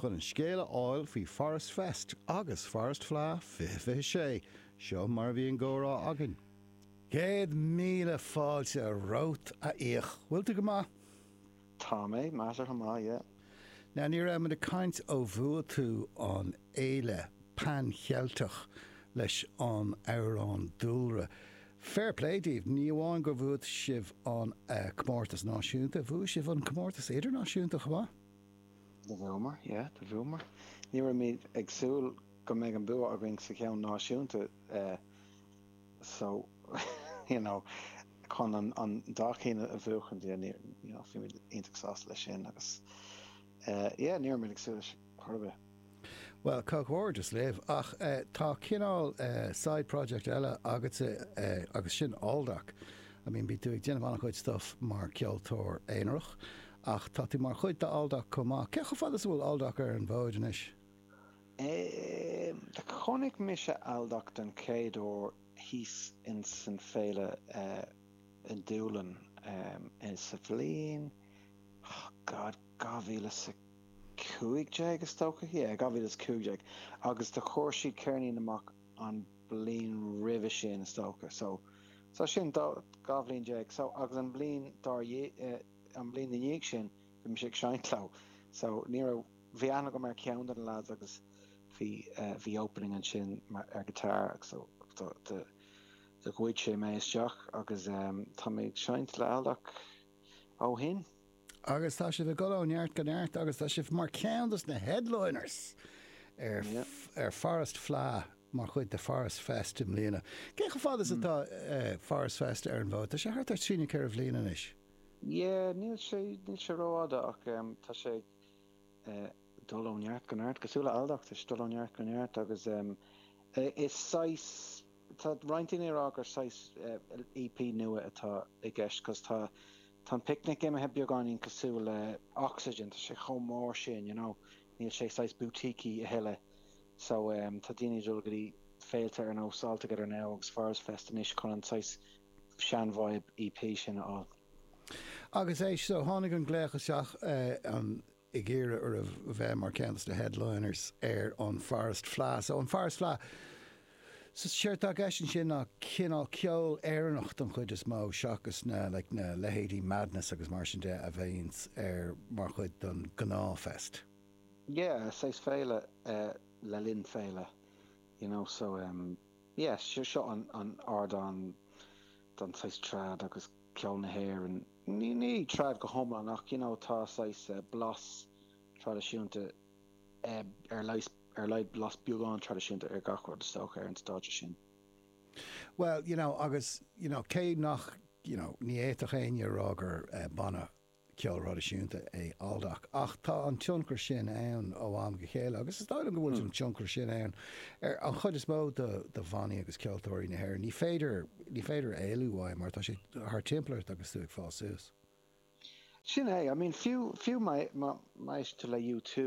Chun an scéal a fháil faoi Forest Fest agus Forest Fleadh 2026, seo mar a bhí an gcomhrá againn. Céad míle fáilte romhat, a Fhiaich. Bhfuil tú go maith? Tá mé measartha maith, yeah. Now, ní raibh muid ag caint ó bhua tú an Fhéile Pan Cheilteach leis an amhrán Dúlra. Fair play daoibh, ní amháin gur bhua sibh an comórtas náisiúnta, bhua sibh an comórtas idirnáisiúnta chomh maith. Do bhuamar, yeah, do bhuamar. Ní raibh muid ag súil go mbeidh an bua againn sa cheann náisiúnta so, you know, chun an dá cheann a bhuachaint, yeah, níor, you know, bhí muid iontach sásta leis sin agus, yeah, ní raibh muid ag súil leis chor ar bith. Bhuel, comhghairdeas libh. Ach tá cineál side project eile agatsa agus sin Aldoc. I mean, bíonn tú ag déanamh an-chuid stuff mar ceoltóir aonarach ach tá tú mar chuid d'Aldoc chomh maith. Cé chomh fada is a bhfuil Aldoc ar an bhfód anois? Chonaic mise Aldoc den chéad uair thíos insan Féile i nDúlainn sa bhliain, oh God, dhá mhíle is a 15 is dócha, yeah, 2015, agus do chuir siad ceirnín amach an bliain roimhe sin is dócha, so so sin dhá bhliain déag, so agus an bliain dár dhiaidh, an bliain ina dhiaidh sin bhí mise ag seinnt leo, so ní raibh, bhí aithne agam ar cheann de na lads agus bhí bhí opening ansin mar ar guitar agus so do do do ghoid sé mé isteach agus tá mé ag seinnt le Aldoc ó shin. Agus tá sibh ag dul ó neart go neart agus tá sibh mar cheann dos na headliners ar ar Forest Fleadh mar chuid de Forest Fest i mbliana. Cé chomh fada is atá Forest Fest ar an bhfód? Tá sé thart ar trí nó ceithre bhliain anois. Yeah, níl sé níl sé rófhada ach tá sé ag dul ó neart go neart, cosúil le Aldoc, tá sé ag dul ó neart go neart agus is saghas, tá roinnt daoine ag rá gur saghas EP nua atá i gceist cos tá, Tá an picnic imithe beagáinín cosúil le Oxegen, tá sé chomh mór sin, you know, níl sé saghas boutique-y a thuilleadh. So, ehm, tá daoine ag dul go dtí féilte ar nós All Together Now agus Forest Fest anois chun an saghas sean-vibe EP sin a fháil. Agus yeah so tháinig an glaoch isteach, eh, an. ag iarraidh oraibh bheith mar cheann de na headliners ar an Forest Fleadh. So an Forest Fleadh, so séard tá i gceist ansin ná cineál ceol Éireannach don chuid is mó seachas na like na leithéidí Madness agus mar sin de a bhíonns air mar chuid don gnáth fest. Yeah, saghas féile le linn féile you know so yeah seo an ardán don saghas trad agus. ceol na hÉireann, ní, ní trad go hiomlán ach you know tá saghas blas traidisiúnta ar leith, ar a laghad blas beagán traidisiúnta ar gach rud is dócha ar an stáitse sin. Bhuel you know agus you know cé nach you know ní fhéadfadh éinne a rá gur banna ceoil thraidisiúnta é Aldoc ach tá an tionchar sin ann ó am go chéile agus is dóigh liom go bhfuil an tionchar sin ann ar an chuid is mó de bhannaí agus ceoltóirí na hÉireann. Ní féidir, ní féidir éalú uaidh mar tá sé thar timpeall ort agus tú ag fás suas. Sin é, I mean fiú, fiú maidir le U2.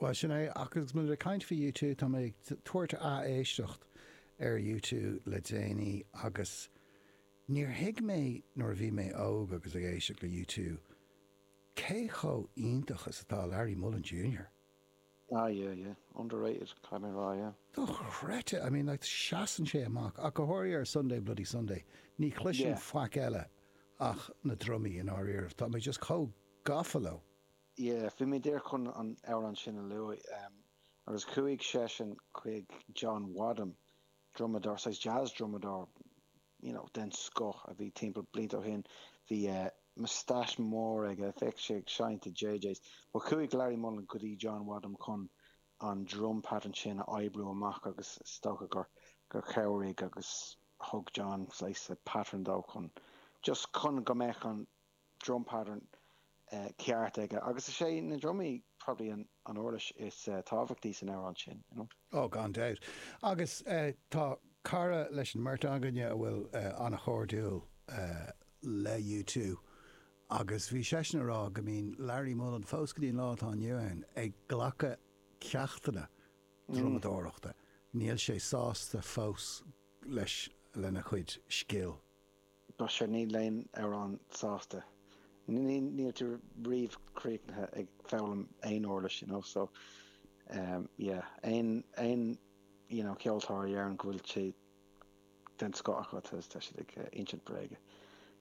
Bhuel, sin é, ach agus muid ag caint faoi U2, tá mé ag tabhairt ath-éisteacht ar U2 le déanaí agus níor thuig mé nuair a bhí mé óg agus ag éisteacht le U2 cé chomh iontach is atá Larry Mullen Junior. Ah yeah, yeah. Underrated, caithfidh mé a rá, yeah. Dochreidte! I mean, like, seasann sé amach, ach go háirithe ar Sunday Bloody Sunday. Ní chloisim faic eile ach na drumaí, i ndáiríribh. Tá mé just chomh gafa leo. yeah bhí mé díreach chun an amhrán sin a luaigh em agus chuaigh seisean chuig John Wadham drumadóir saghas jazz drumadóir you know den scoth a bhí timpeall blianta ó shin bhí eh moustache mór aige bheadh sé ag seinnt i JJ's but chuaigh Larry Mullen go dtí John Wadham chun an drum pattern sin a oibriú amach agus is dócha gur gur chabhraigh agus thug John saghas pattern dó chun just chun go mbeadh an drum pattern, ceart aige agus is é na drumaí probably an uirlis is tábhachtaí san amhrán sin, you know. Oh, gan dabht. Agus tá cara leis an mbeirt againne a bhfuil an-chairdiúil le U2 agus bhí seisean ag rá go mbíonn Larry Mullen, fós go dtí an lá atá inniu ann, ag glacadh ceachtanna drumadóireachta. Níl sé sásta fós leis, lena chuid scil. But see níl éinne riamh sásta. Níl tú riamh críochnaithe ag foghlaim aon uirlis, you know, so yeah, aon, aon, you know, ceoltóir a deireann go bhfuil sé den scoth acu, tá siad ag insint bréige.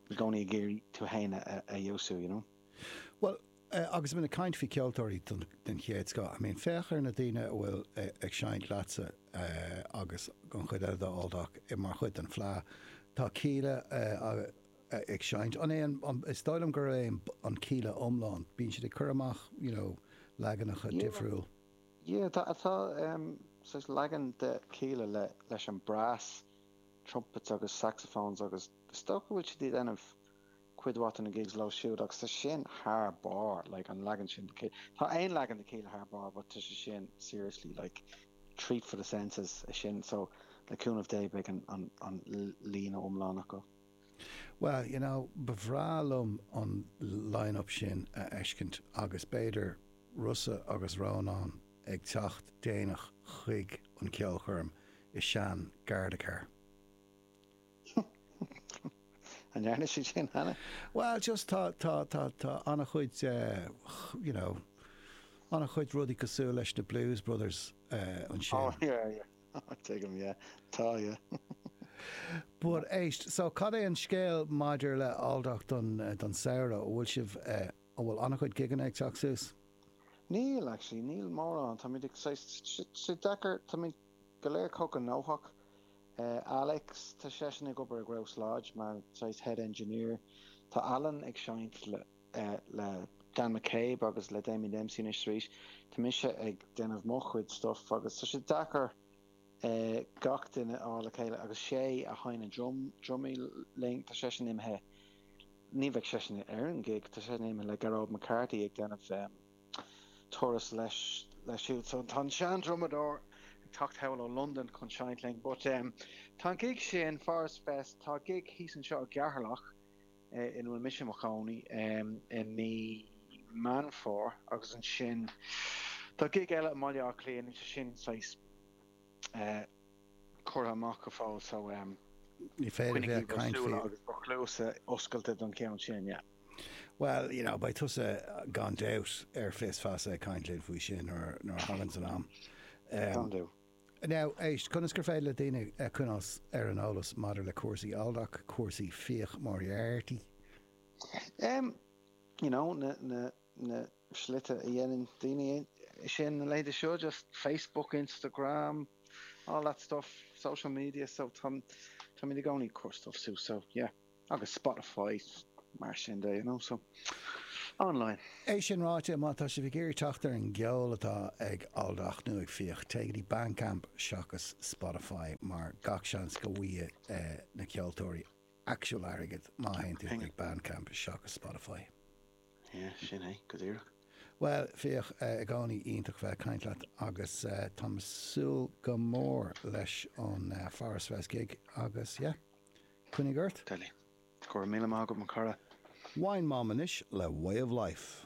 I gcónaí ag iarraidh tú fhéin a fheabhsú, you know. Bhuel, agus muid ag caint faoi cheoltóirí den chéad scoth, I mean, féach ar na daoine a bhfuil ag seinnt leatsa agus an chuid eile de Aldoc mar chuid den Fleadh. Tá Kíla ag seinnt, an é an, is dóigh liom gurb é an Kíla iomlán, bíonn siad ag cur amach, you know, leaganacha difriúil. Yeah, tá, tá, saghas leagan de Kíla le, leis an brass, trumpets agus saxophones agus is dócha go bhfuil siad ag déanamh, cuid mhaith de na gigs leo siúd agus tá sin thar barr like an leagan sin de Kíla, tá aon leagan de Kíla thar barr but tá sé sin seriously like treat for the senses é sin so le cúnamh Dé beidh an, an, an líne iomlán acu. Bhuel, you know, ba bhreá liom an line-up sin a fheiscint agus b'fhéidir Rossa agus Rónán ag teacht déanach chuig an ceolchoirm i sean Gardacar. An ndearna siad sin cheana? Bhuel, just tá, tá, tá, tá an-chuid, you know, an-chuid rudaí cosúil leis na Blues Brothers ansin. Oh, yeah, yeah. Tuigim, yeah. Tá, yeah. But éist, so cad é an scéal maidir le Aldoc don, don samhradh? An bhfuil sibh, an bhfuil an-chuid gigeanna ag teacht suas? Níl, actually, níl mórán. Táimid ag saghas, sé, sé deacair, táimid, go léir cuíosach gnóthach. Alex, Tá seisean ag obair i nGrouse Lodge mar saghas head engineer. Tá Alan ag seinnt le Dan McCabe agus le Damien Dempsey anois is arís. Tá mise ag déanamh mo chuid stuff agus tá sé deacair gach duine a fháil le chéile agus an té a sheinn na drumaí linn, tá seisean imithe, ní bheidh seisean ar an gig, tá seisean imithe le Gearóid McCarthy ag déanamh turas leis siúd. So tá an seandrumadóir ag teacht anall ó Londain chun seinnt linn. But tá an gig sin, Forest Fest, tá gig thíos anseo i gCeatharlach ina bhfuil mise i mo chónaí i mí Meán Fómhair agus ansin tá gig eile i mBaile Átha Cliath, níl sé sin saghas. curtha amach go fóill so Ní féidir coinnígí bhur súile agus bhur chluasa oscailte don cheann sin, yeah. Bhuel, you know, beidh tusa gan dabht ar Fios Feasa ag caint linn faoi sin nuair nuair a thagann an am. Can do. Now, éist, conas gur féidir le daoine eh, coinneáil ar an eolas maidir le cúrsaí Aldoc, cúrsaí Fiach Moriarty? Em, you know, na, na, na, slite a dhéanann daoine é sin na laethanta seo just Facebook Instagram all that stuff social media so tá táimid i gcónaí ag cur stuff suas so yeah agus Spotify mar sin de you know so online. É sin ráite, má tá sibh ag iarraidh teacht ar an gceol atá ag Aldoc nó ag Fiach, téigh go dtí Bandcamp seachas Spotify mar gach seans go bhfaighidh na ceoltóirí actual airgead má théann tú chuig Bandcamp seachas Spotify. Yeah, sin é, go díreach. Bhuel, Fiach i gcónaí iontach bheith ag caint leat agus táim ag súil go mór leis an Forest Fest gig agus, yeah, coinnigh ort. Go raibh míle maith agat, mo chara. Wine Mom anois le Way of Life.